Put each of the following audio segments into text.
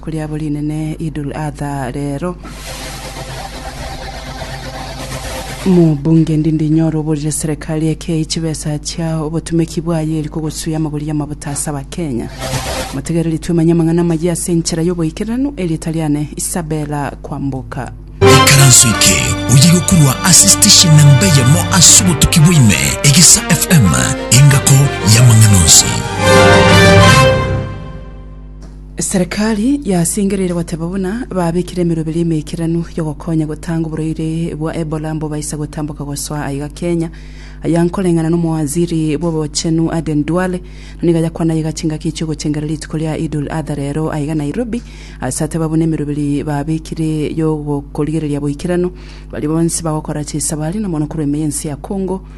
Koriabo rinene Idul Adha rero. Mobunge ndindi nyoro oborire serikali ekei chibesa chia obotumeki bwaye eri kogosuya amagori y'amabuta ase abakenya. Motegere ritwemanye amang'ana amayia ase enchera y'oboikeranu eri Italiane Isabella kwamboka. Ikaranso eke oye gokorwa ase station namba eyemo ase obotuki bwaime Egesa FM engako y'amang'ana onsi. Eserekari yasingereire goteba buna babekire emeroberi emeikeranu y'ogokonya gotanga oborwaire bwa Ebola mbobaisa gotamboka gosoa aiga Kenya. Aya nkoreng'ana n'omowaziri bw'obochenu Aden Duale na nigo ayakwana aiga chingaki chi'ogochengereria rituko ria Idul Adha rero aiga Nairobi ase ateba buna emeroberi babekire y'ogokorigereria boikeranu baria bonsi bagokora chisabari na mono korwa ime y'ense ya Congo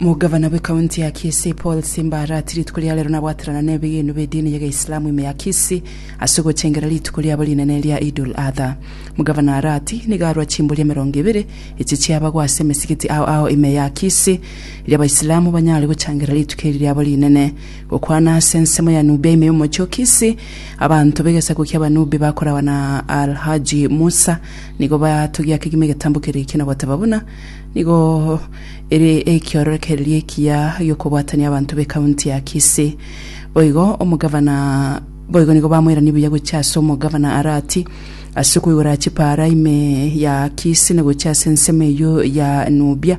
Omogabana bw'ekaunti ya Kisii Paul Simba arati rituko ria rero nabwaterana nebigiinu bi'edini y'egeislamu ime ya Kisii ase ogochengera rituko riabo rinene ria Eid-ul Adha. Omogabana arati nigo arwa chimbori emerongo ebere echi chiabagwa ase emesigiti ao ao ime ya Kisii eria abaislamu banyare gochangera rituko eri riabo rinene. Gokwana ase ensemo ya Nubia ime y'omochie o Kisii, Abanto b'egesaku ki'Abanubi bakoragwa na Al-Haji Musa nigo batogia kegima egetambo keria ekiya na goteba buna nigo ere ekiorokererio ekiya gi'okobwatania abanto b'ekaunti ya Kisii. Boigo omogavana boigo nigo bamoiranie buya gochia ase omogavana Arati ase okoigora chipaara ime ya Kisii na gochia ase ensemo eyio ya Nubia.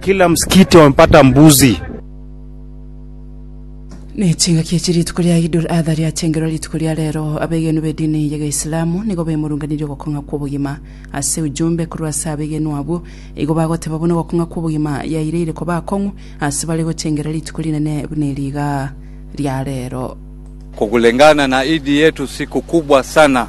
Kila msikiti wamepata mbuzi. Nechingaki echi rituko ria Idul Adha riachengerwa rituko ria rero, abegenwa bedini ya Geislamu nigo bemurunganirie ogokong'a kwobogima. Ase ujumbe korwa ase abegenwa abwo, igo bagoteba buna ogokong'a kwobogima yaireire koba akong'u ase bare gochengera rituko rinene buna eri igaa ria rero. Kukulingana na idi yetu siku kubwa sana